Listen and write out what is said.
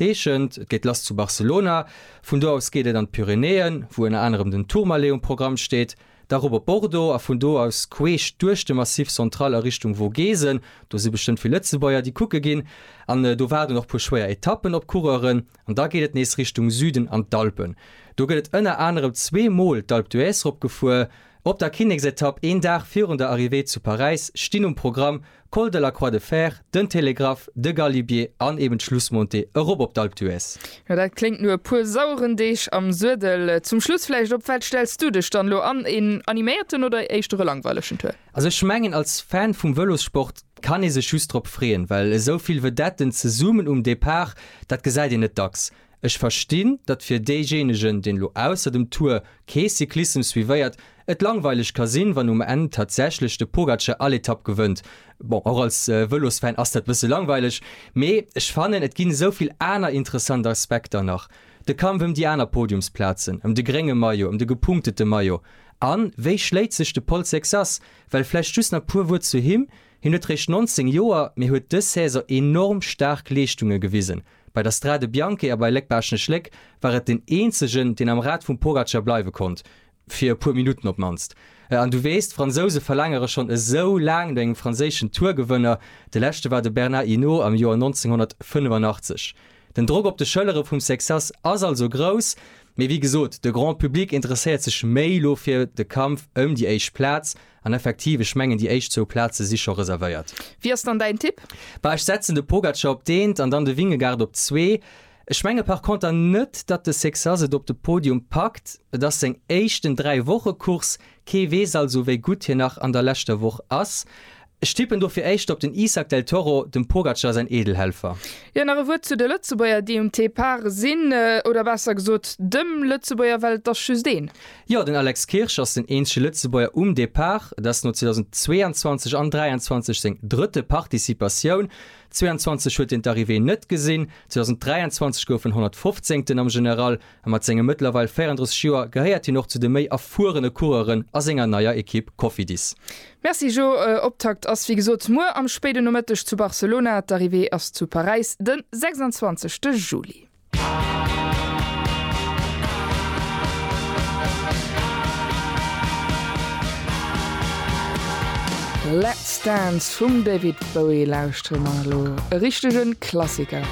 Eechent, et geet lass zu Barcelona, vun do aus geet et an d'Pyrenäen, wou ënner anerem den Tourmalet um Programm steet, da erop op Bordeaux a vun do aus queesch duerch de Massif Central a Richtung Vogesen, do si bestëmmt vill Lëtzebuerger, déi kucke ginn, an do waarden och puer schwéier Etappen op d'Coureuren, an da geet et nees Richtung Süden an d'Alpen. Do gëtt et ënner anerem zwee Mol d'Alpe d'Huez rop gefuer. Op der Kinneksetapp, een Dag virun der Arrivée zu Paräis, stinn um Programm. Col de la Croix de Fer, den Télégraphe, de Galibier an eben d'Schlussmontée erop op d'Alpe d'Huez. Jo, dat kléngt no e puer saueren Deeg am Suedel. Zum Schluss vläicht, op wat stells du dech dann elo an? Een animéierten oder éischter e langweilegen Tour? Also ech mengen, als Fan vum Vëlossport kann ee sech just drop freeën, well esou vill Vedetten zesummen um Depart, dat gesäit een net dacks. Ech verstinn, datt fir deejéinegen, deen elo ausser dem Tour kee Cyclissem suivéiert, et langweileg ka sinn, wann um Enn tatsächlech de Pogacar all Etapp gewënnt. Bon, och als Vëlosfan ass dat bësse langweileg, mee ech fannen, et ginn esou vill aner interessant Aspekter nach, de Kampf ëm déi aner Podiumsplazen, ëm de grénge Maillot, ëm de gepunktete Maillot. A wéi schléit sech de Pol Sexas? Well vläicht just nach puer Wuert zu him, hien huet réischt 19 Joer, mee huet dës Saison enorm staark Leeschtunge gewisen. Bei der Strade Bianche a bei Léck-Baaschtnech Léck war et den eenzegen, deen am Rad vum Pogacar bleiwe konnt, fir e puer Minutten op d'mannst. An du weess, d'Fransouse verlaangere schonn esou laang no engem franséischen Tour-Gewënner, de leschte war de Bernard Hinault am Joer 1985. Den Drock op de Schëllere vum Sexas ass also grouss, mee wéi gesot, de Grand Public interesséiert sech méi elo fir de Kampf ëm déi éischt Plaz An effektiv, ech mengen déi éischt zwou Plaze si scho reservéiert. Wie ass dann däin Tipp? Bah, ech setzen de Pogacar op deent an dann de Vingegaard op zwee. Ech menge par conter net, datt de Sexas et op de Podium packt. Et ass seng éischten Dräi-Woche-Course, kee weess also wéi gutt hien nach an der leschter Woch ass. Ech tippen dofir éischter op den Isak del Toro, dem Pogacar säin Eedelhelfer. Jo, nach e Wuert zu de Lëtzebuerger, déi um Depart sinn, oder besser gesot dem Lëtzebuerger, well et ass just een. Jo, den Alex Kirsch ass den eenzege Lëtzebuerger um Depart. Et ass no 2022 an 23 seng drëtte Participatioun. 22 huet hien d'Arrivée net gesinn, 2023 gouf en 115. am General a mat senge mëttlerweil 34 Joer gehéiert hien och zu de méi erfuerene Coureuren a senger neier Ekipp Cofidis. Merci Jo, Optakt ass wéi gesot muer am spéiden Nomëtteg zu Barcelona. D'Arrivée ass zu Paräis de 26 Juli. Let's Dance vum David Bowie lauschteren mer elo, e richtegen Klassiker.